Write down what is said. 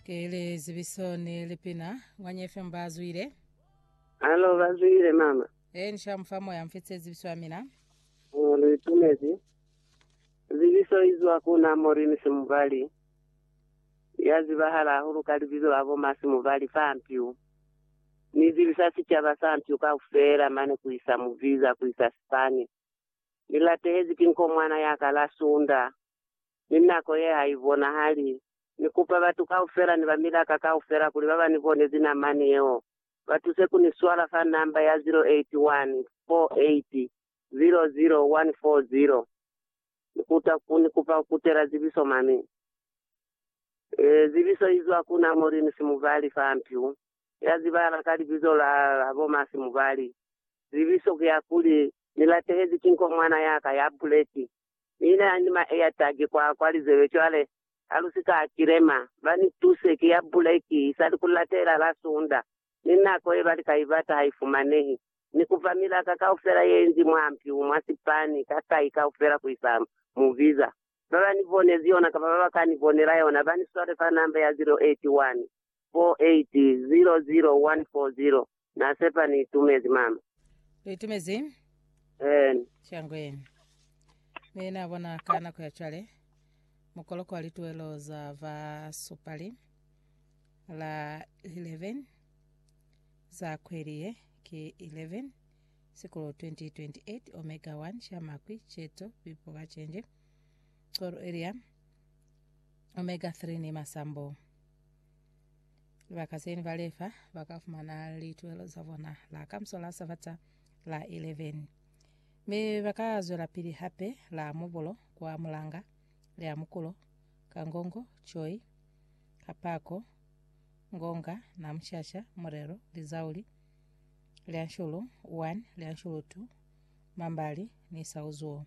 Kele zibiso ni lipina. Ngwanye FM ba zwile. Alo ba zwile mama. E ni shamu fa moya mfitse zibiso ya mina. Ngolo itumezi. Zibiso izwa kuna Morini Simubali. Ya zibahala hahulu ka libizo la bo Masi Mubali fa Mpiu. Ni zibisa sicaba sa Mpiu kaufela mane ku isa Muviza ku isa Sipani. Ni latehezi ki nkomwana ya ka la Sunda. ni nako ye ha i bonahali. Ni kupa batu kaufela ni ba milaka kaufela kuli ba ba ni bonezi namani yeo, ba tuse ku ni swala fa namba ya 0814800140. Ni kuta ku ni kupa ku tela zibiso mani. Ee, zibiso i zwa ku na Maureen Simubali fa Mpyu, ya zibahala ka libizo la habo ma Simubali. Zibiso ki ya kuli, Ni latehezi ki nkomwana ya ka ya buleki. Mina ni maeataki kwa kwa lizebe cwale, ha lu si ka kilema. Ba ni tuse, ki ya buleki, isali ku latela la Sunda, ni nako ye ba li ka ibata ha i fumanehi. Ni kupa milaka kaufela ye nzi mwa mpiu, mwa sipani, ka kai kaufela ku isa mu biza. Ba ba ni bonezi yona kapa ba ba ka ni bonela yona, ba ni swale fa namba ya 081. 4800140 Na sepa ni itumezi mama. Lu itumezi? Eena. Shangweni. Mi na bona ka nako ya cwale mukoloko wa lituelo za va supali la 11 za kweli ye ki 11 sikulo 2028 omega 1 sha makwi cheto bipo ba chenje coro area omega 3 ni masambo Bakaseni ba lefa ba ka fumana lituelo za bona la kamso la Sabata la 11 me ba ka zwela pili hape la mubulo kwa mulanga le a mukulo ka ngongo choi kapako ngonga na mushasha murelo lizauli le anshulu 1 le anshulu 2 mambali ni sauzuo